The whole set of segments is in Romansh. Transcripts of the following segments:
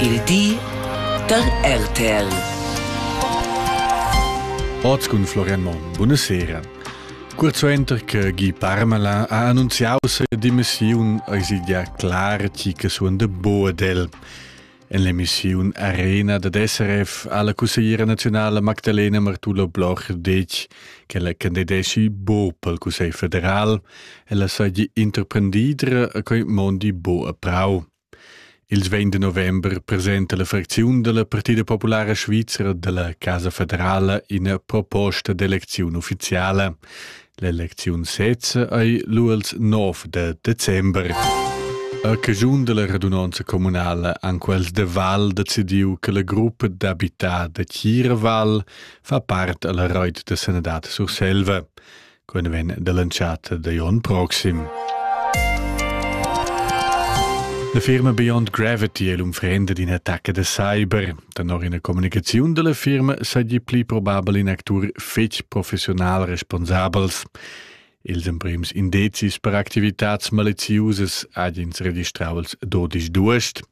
Il di da RTL. Oz cun Florian Monn. Buonasera. Curt suenter che Guy Parmelin ha annunziau sa demissiun eis idia clar tgi che suon de Boadel. En l'emissiun Arena da SRF ha la cussegliera nazionale Magdalena Martula Bloch detg che la candidesci bo pel Cussegl federal e la sagli interprendidra a quei mondi bo a prau. Ils vegn de november presenta la fracziun dalla Partida populara svizra dalla Casa federala ina proposta d'elecziun ufficiala. L'elecziun sezza ei lu els 9 de december. A caschun della radunanza communala han quels de Val decidiu che la gruppa d'habitar de Chiraval fa part alla reit de Senadat Surselva. quen vegn dall'entschatta da Jon proxim. La firma Beyond Gravity è l'unfrenda d'in attacca da cyber. Danor ina communicaziun dalla firma sagli pli probabel in actur fetg professional responsabels. Ils emprims indezis per activitads maleziusas ha ins registraus dodisch duest.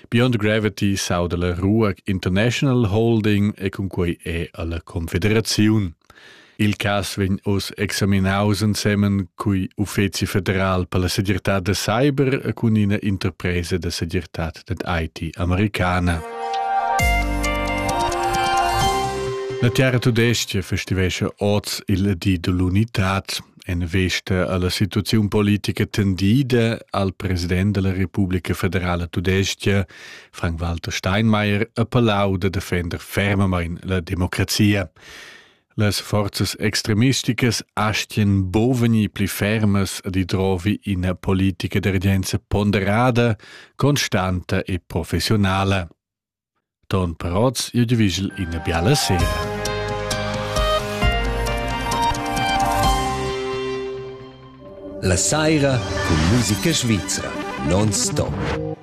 Beyond Gravity sauda la Ruag International Holding e cun quei è alla Confederaziun. Il cass vegn oz examinaus ensemen cui uffeci federal per la segirtad da cyber cun ina interpresa da segirtad dad IT americana. La Terra Tudestia festivesce oz il di dell'unità en vesta alla situazione politica tendida al president della Repubblica Federale Tudestia, Frank-Walter Steinmeier, a Palau de defender fermamain la democrazia. Las forzas extremisticas astien buc vegnir pli fermas ad idrovi ina politica d'urgenza ponderada, constanta e professionala. Ton Peroz jeu divigel ina biala sera. La saira cun musica svizra non stop.